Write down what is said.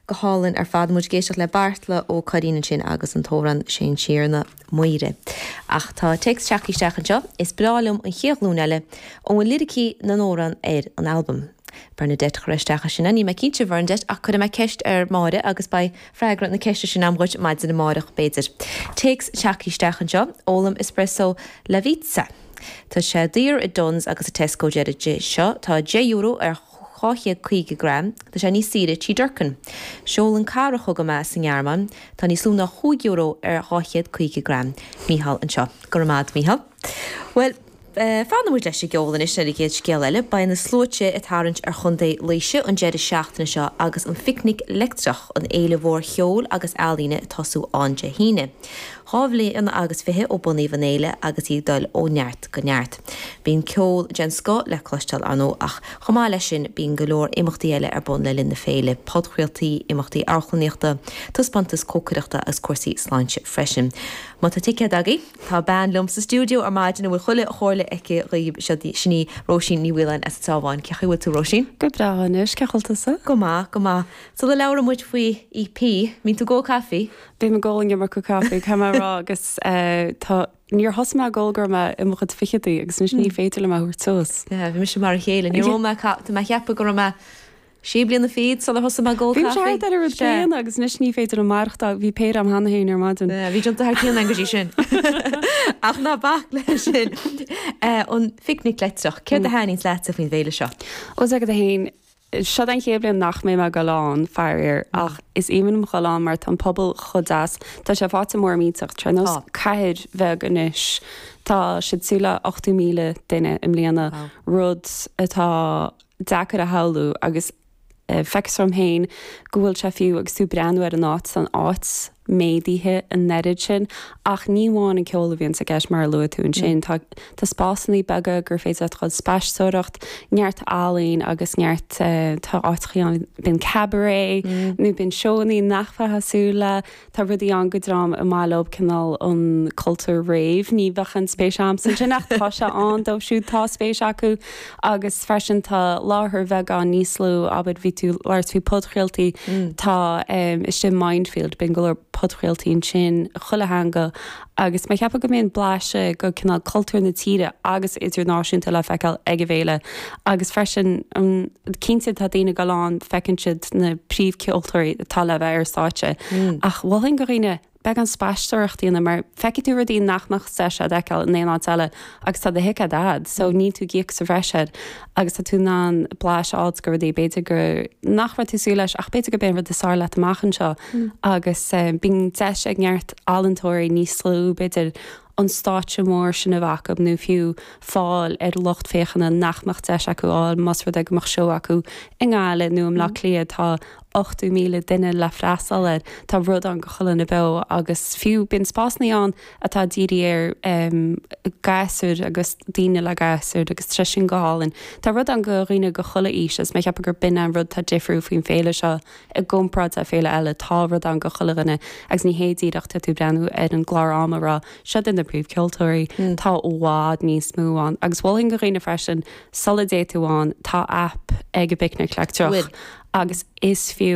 Go hálainn ar fad. Muid ag éisteacht le Beartla Ó Curraoin ansin agus an t-amhrán Seán Ó Sé a Mhuire. Ach tá téacs tagtha isteach anseo. Is breá liom an chéad ghlúin eile ó an liricí na n-amhrán ar an albam. Bernadette chuir isteach é sin. Níl mé cinnte, Bhernadette, ach cuirfidh mé ceist ar Mháire agus beidh freagra na ceiste sin agam dhuit maidin amáireach, b'fhéidir. Téacs tagtha isteach anseo. Ólaim espresso Lavazza. Tá sé daor i Dunnes agus i Tesco deir an duine seo. Tá €10 ar 250 gram, tá sé níos saoire i dTigh Durkan. Seolann cara chugam é sa nGearmáin. Tá níos lú ná chúig euro ar 250 gram. Mícheál anseo. Go raibh maith agat, Mícheál. Bhuel, eh, fanfaidh muid leis an gceol anois ar an gcéad scéal eile. Beidh na sluaite ag tarraingt ar Chontae Laoise an deireadh seachtaine seo agus an Phicnic Leictreach, an fhéile mhór cheoil agus ealaíne, ag tosú ann Dé hAoine. Dhá bhliain agus fiche ó bunaíodh an fhéile agus í ag dul ó neart go neart. Bíonn ceol den scoth le cloisteáil ann ach chomh maith leis sin bíonn go leor imeachtaí eile ar bun le linn na féile, podchraoltaí, imeachtaí amharclannaíochta, taispeántas cócaireachta agus cúrsaí sláinte freisin. Má tá ticéad agaibh. Tá bean liom sa stiúideo ar maidin a bhfuil chuile chomhairle aici dhaoibh, sin í Róisín Ní Mhaoláin as an gCeabháin. Cé chaoi a bhfuil tú Róisín? Go breá anois, cén chaoi a bhfuil tusa? Go maith, go maith. Sula labhraímid faoi EP, an mbíonn tú ag ól caife? Bím ag ól an iomarca caife, caithfidh mé a rá, agus tá, níor thosaigh mé ag ól go raibh mé i mo chuid ficheadaí agus anois ní féidir liom é a thabhairt suas. Bhí mise mar a chéile, níor ól mé caife, tá mé a cheapadh go raibh mé sé bliana fichead sular thosaigh mé ag ól caife. Bhí mise thart ar an rud céanna agus anois ní féidir liom maireachtáil, bhí péire agam cheana féin ar maidin. Bhí tú ag déanamh thar cionn go dtí sin. Ach ná bac leis sin. An phicnic leictreach, céard a thaitníonn leatsa faoin bhféile seo? Ó, D'fhéadfadh a haon Seo an chéad bhliain nach mbeidh mé ag goil ann, faraor, ach is aoibhinn liom a ghoil ann mar tá an pobal chomh deas. Tá sé faighte mór millteach, tá sé ar nós cathair bheag anois. Tá siad ag súil le 80,000 duine i mbliana, rud atá deacair a shamhlú agus feictear dom féin go bhfuil sé fiú agus tú ag breathnú ar an áit, tá an áit. méadaithe an oiread sin ach ní amháin an ceol a bhíonn i gceist mar a luaigh tú ansin. Tá tá spásannaí beaga gur féidir leat dul ag spaisteoireacht, neart ealaín agus neart eh, tá áiteachaí ann bíonn cabaret nó bíonn seónnaí nach mbeifeá ag súil leo. Tá rudaí ann do dhream ar maith leob cineál an cultúr rave, ní bheadh aon spéis a'msa ansin ach tá sé ann dóibh siúd atá spéis acu. agus freisin tá láthair bheagán níos lú ó bhí tú ag labhairt faoi podchraoltaí tá istigh Mindfield bíonn go leor podchraoltaí ansin chuile theanga agus mé ag ceapadh go mbíonn blaiseadh de chineál cultúr na tíre agus idirnáisiúnta le feiceáil ag an bhféile agus freisin cinnte tá daoine ag goil ann feiceann siad na príomhcheoltóirí atá le bheith ar stáitse ach mholfainn do dhaoine Beagán spaisteoireacht dhéanamh mar feicfidh tú rudaí nach mbeadh deis a'd a fheiceáil in aon áit eile agus tá do thicéad a'd so níl tú ag íoc sa bhreis air agus tá tú in ann blas a fháilt go rudaí b'fhéidir gur nach raibh tú ag súil leis ach b'fhéidir gurb é an rud is fearr leat amach anseo agus bíonn deis ag neart ealaíontóirí níos lú b'fhéidir an stáitse mór sin a bheith acu nó fiú fáil ar lucht féachana nach mbeadh deis acu a fháil más rud é go mbeadh seó acu i nGaillimh nó i mBleá Cliath. Tá 80,000 duine le freastal air, tá rud ann go chuile dhuine beo agus fiú bíonn spásannaí ann atá ag dírí ar ghasúir agus daoine le gasúir agus tá sé sin go hálainn. Tá rud ann go dhaoine de chuile aois agus cheapfainn gur b'in an rud atá difriúil faoin féile seo, I gcomparáid le féile eile tá rud ann go chuile dhuine agus ní hé díreach tá tú ag breathnú ar an gclár am ag rá seo iad na príomh ceoltóirí, tá i bhfad níos mó ann agus mholfainn go dhaoine freisin sula dté tú ann tá aip ag an bPicnic Leictreach agus is fiú